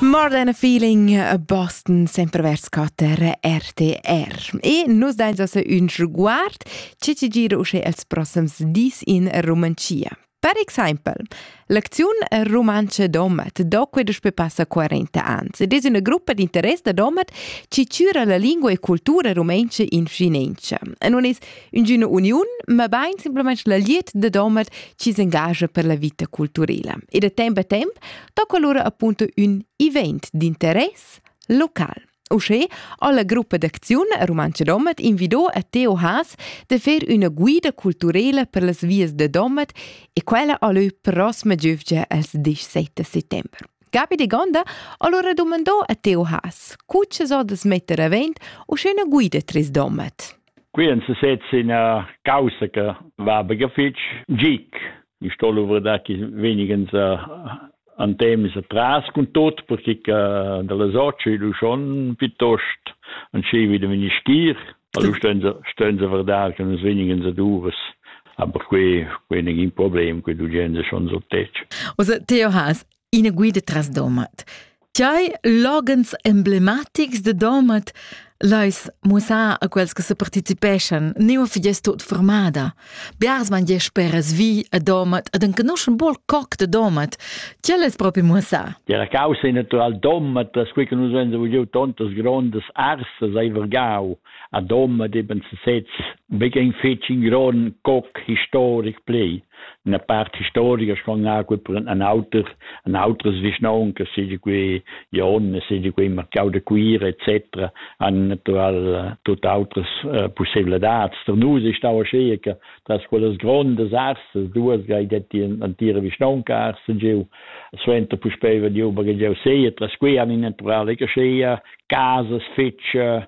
More than a feeling a Boston, sempre vers Kater, RTR. E nus dain se un sguard ce ci gira usce els prossims dis in Romancia. Per exempel, l'acziun Romance Domat, doque dus pe passa 40 ans, ed es una gruppa d'interess da Domat ci cura la lingua e cultura romenca in Finencia. E non es Üngüna uniun, ma bain simplamaing la liet da Domat chi s'engagia per la vita culturela. E da temp a temp tocca lura appunto ün event d'interess local. Uschè ho la gruppa d'acziun Rumantscha Domat invido a Theo Haas da fer üna guida culturela per las vias da Domat e quella ha lö prossima giövgia als 17 settember. Gabi de Gonda allora domandò a Theo Haas, cu ci so da smetter avent uschè üna guida tris Domat? Qui en sesez ina causa che va bega fitg gic. Ich sto luvra da chi venigens an temes atras cun tot perché che da la socia lu schon piuttost an scevi da ministir Allora stönza verdar che nus venigen a duras aber quei quei negin problem, quei du gens schon so tec. Also Theo has ina guida tras Domat. Tgei loghens emblematics de Domat leis mussar a quels che se participeschan, neua fi gest tot formada. Biars man gest speras vi a Domat ed enconuschen bol coc de Domat. Tgei les propi mussar? Era causa è natural Domat, per quei che nus venza vugliu tontas grondas arsas ai Vergau. A Domat eben sesez, becca in fetg in gron coc historic plei. ina part historia schon gut per an auter an outras vischnaun che seigi qui Jon seigi qui Marcau de Cuira etc an natural tut outras uh, possibilidats der nus ist auch schee che das quelles grondes arses du has gai detti an tire vischnaun arse giu suenter puspei vediu bagel giu sei tras qui an in naturale che schee casas fece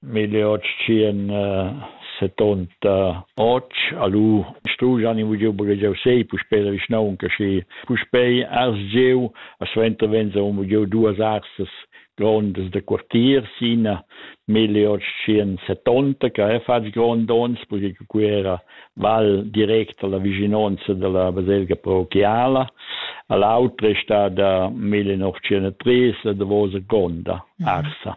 1808 alu strujan in vugiu bugegiau sei puspei la vischnaunca schi puspei asgiu a suenter venza un vugiu duas arsas grondas de quartier sina 1870 che ha fatg grond ons perché qui era val direct alla vicinanza della baselga parochiala all'altra è stata 1903 la davosa gronda arsa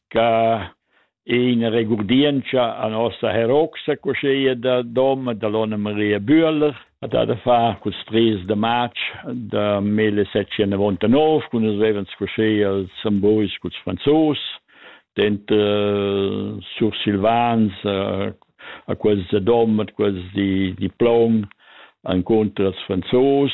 ca è in regurdientscha a nossa heroxa cosceia da dom da l'Onna Maria Bühler at ha da far cul stries de march de 1799 cun es revens cosceia els sambois culs franzos dent uh, sursilvans uh, a quels de dom at quels di diplom an contra els franzos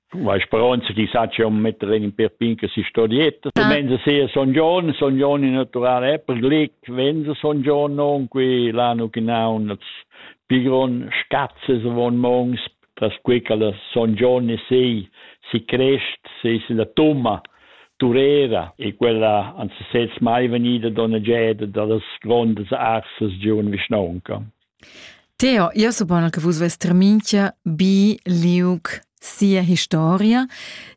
Ma speronza chi sa cha un metter in per pinca si storietta. Ah. Menza sia Son Giorgio, Son Giorgio in naturale è per glic, venza Son Giorgio non qui l'anno che naun las pigron scazze von mons tras qui che la Son Giorgio sei si crest, sei si la tumma Turera e quella anzi sez mai venida donna Geda dallas grondas arsas giun Vischnaunca. Theo, io suppon che vus vess terminchia bi liug sia historia.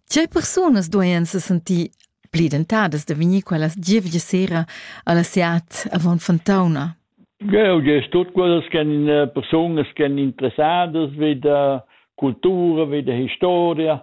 Tgei persunas dueien se sentir pli dentadas da vegnir quellas gievgia sera alla SEAT avon Fontauna? Geo, gest tut quellas che eh, persunas che interessadas vi da cultura, vi da historia,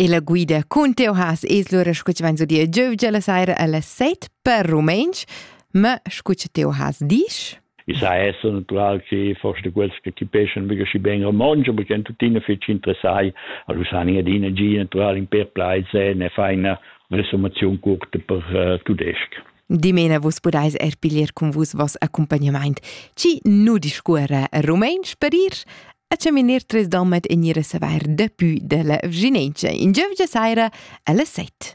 E la guida cun teu has es lura scu chi vain sudia giövgia la saira a las set per rumentsch, ma scu cha teu has disch? I sa esser natural che forse quels che chipeschan mica schi ben romontsch, aber ch'en tuttina fetg interessai, allura san i adina gia natural in per plaise ne fa ina resumation curta per uh, tudesc. Dimena vus pudais er piglier cun vus vos accompagnamaint. Ci nu discuora rumentsch per ir? A chaminar tres domet e gnir a savair dapü da la vginentscha in giövgia saira alle set.